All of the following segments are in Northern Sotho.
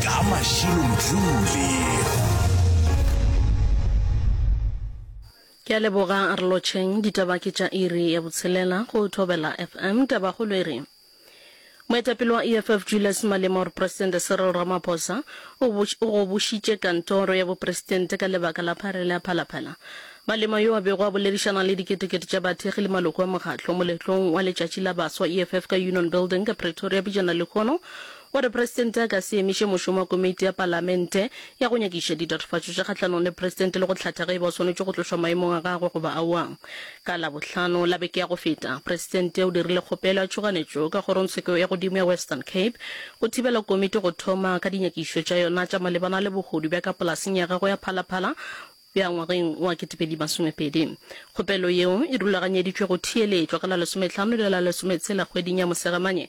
ka mašilo mdlule ke a leboga a re lotšheng ditaba ke tša iri ya botshelela go thobela fm tabagolo e re moetapele wa eff julius malema gore presidente cyril ramaphosa o gobošitše kantoro ya bopresidente ka lebaka la pharela ya phalaphala malema yo a bego a boledišana le diketekete tša bathekgi le maloko a mokgatlo moletlong wa letšatši la baswa eff ka union building ka pretoria bijana lehono O re Presidente a ka se emiše mošomo wa Komeiti ya Palamente ya go nyakiša ditatofatšo tše kgahlanong le Presidente le go hlatha ge e ba o swanetše go tlošwa maemong a gagwe goba aowa. Ka Labohlano la beke ya go feta, Presidente o dirile kgopelo ya tšhoganetšo ka Kgorongtsheko ya Godimo ya Western Cape go thibela Komiti go thoma ka dinyakišo tša yona tša malebana le bohodu bja ka polaseng ya gagwe ya Phala Phala bja ngwageng wa 2020. Kgopelo yeo e rulaganyeditšwe go theeletšwa ka la lesometlhano le la lesometshela kgweding ya Mosegamane.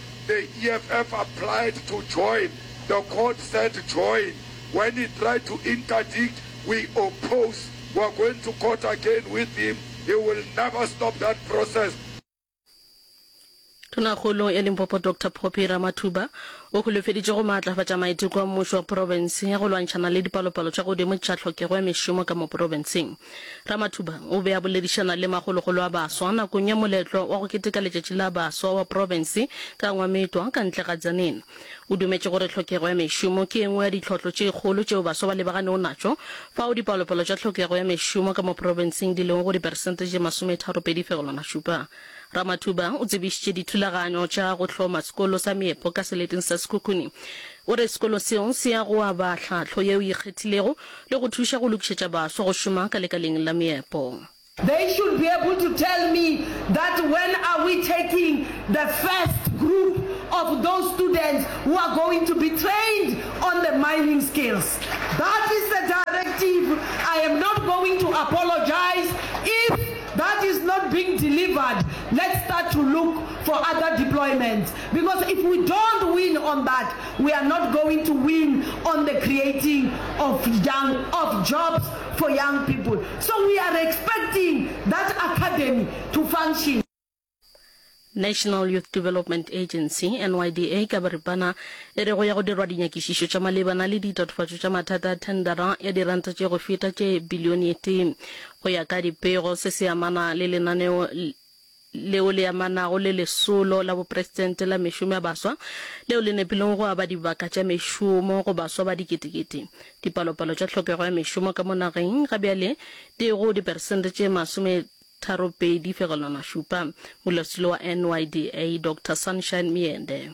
The EFF applied to join, the court said join, when he tried to interdict, we oppose, we're going to court again with him, he will never stop that process. Tonakgolo ya Limpopo Doctor Poppy Ramathuba o holofeditše go maatlafatša maiteko a mmušo wa profense ya go lwantšhana le dipalopalo tša godimo tša tlhokego ya mešomo ka mo profenseng. Ramathuba o be a boledišana le magologolo a baswa nakong ya moletlo wa go keteka letšatši la baswa wa profense ka Ngwametwa ka ntle ga Tzaneen. O dumetše gore tlhokego ya mešomo ke e nngwe ya ditlhohlo tše kgolo tšeo baswa ba lebaganego natšo, fao dipalopalo tša tlhokego ya mešomo ka mo profenseng di lego go diperesente tše masometharopedi fegelwana šupa. Ramathuba o tsebišitše dithulaganyo tša go hloma sekolo sa meepo ka seleteng sa Sekhukhune O re sekolo seo se ya go aba tlhahlo ye o e kgethilego le go thuša go lokišetša baswa go šoma ka lekaleng la meepo. They should be able to tell me that when are we taking the first group of those students who are going to be trained on the mining skills. That is the directive, I am not going to apologise if that is not being delivered, let's start to look for other deployments. Because if we don't win on that, we are not going to win on the creating of young of jobs for young people. So we are expecting that academy to function. National Youth Development Agency, NYDA, ka boripana e re go ya go dirwa dinyakišišo tša malebana le ditatofatšo tša mathata a thendera ya diranta tše go feta tše bilione ye tee go ya ka dipego se se amana le lenaneo leo le amanago le Lesolo la Bopresidente la Mešomo ya Baswa, leo le nepilego go aba dibaka tša mešomo go baswa ba diketekete. Dipalopalo tša tlhokego ya mešomo ka mo nageng ga bjale di go diperesente tše masometharopedi fegelwana šupa. Molaosetilo wa NYDA, Doctor Sunshine Myende.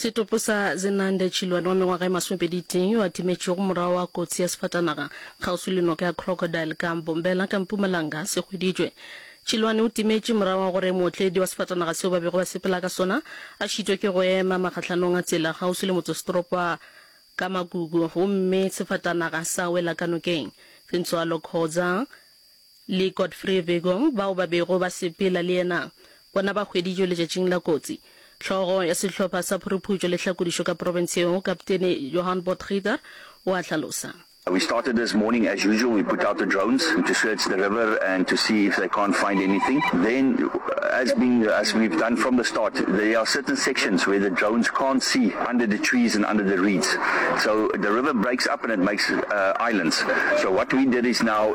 Setopo sa Zenande Chilwane wa mengwaga e masomepedi tee yo a timetšego morago wa kotsi ya sefatanaga kgauswi le noka ya Crocodile ka Mbombela ka Mpumalanga se hweditšwe. Chilwane o timetše morago wa gore mootledi wa sefatanaga seo ba bego ba sepela ka sona a šitwe ke go ema makgahlanong a tsela kgauswi le motsesetoropo wa Kamagugu gomme sefatanaga sa wela ka nokeng. Fintsoalo Khoza, le Godfrey Vigong bao ba bego ba sepela le yena, bona ba hweditšwe letšatšing la kotsi. Hlogo ya sehlopha sa phuruphušo le hlakodišo ka profense yeo, Kapteni Johan Potgieter, o a hlalosa. We started this morning as usual, we put out the drones to search the river and to see if they can't find anything. Then, as being as we've done from the start, there are certain sections where the drones can't see under the trees and under the reeds. So the river breaks up and it makes islands. So what we did is now,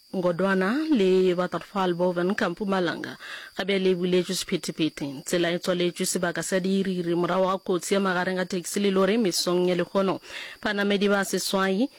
Ngodwana le Waterfall Boven ka Mpumalanga ga bjale e buletšwe sephethephethe. Tsela e tswaletšwe sebaka sa diiri-iri morago ga kotsi ya magareng ga taxi le lori mesong ya lehono. Banamedi ba seswai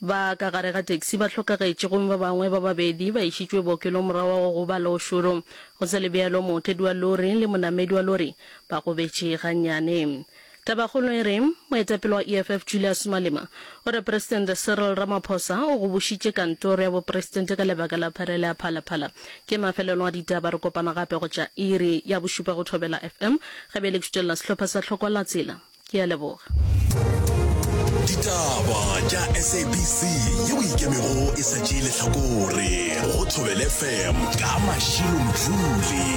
ba ka gare ga taxi ba hlokagetše gomme ba bangwe ba babedi ba išitšwe bookelong morago ga go gobala o šoro. Go sa le bjalo, mootledi wa lori le monamedi wa lori ba gobetše gannyane. Tabakgolo e re, Moetapele wa EFF Julius Malema o re Presidente Cyril Ramaphosa o go bušitše kantoro ya bopresidente ka lebaka la pharela ya Phalaphala. Ke mafelelo a ditaba, re kopana gape go tša iri ya bošupa go Thobela FM, ge be e le ke šutelela sehlopha sa Hlokwalatsela. Ke a leboga. Ditaba tša SABC yeo e ikemego e sa tšee lehlakore go Thobela FM ka Mashilo Mdluli.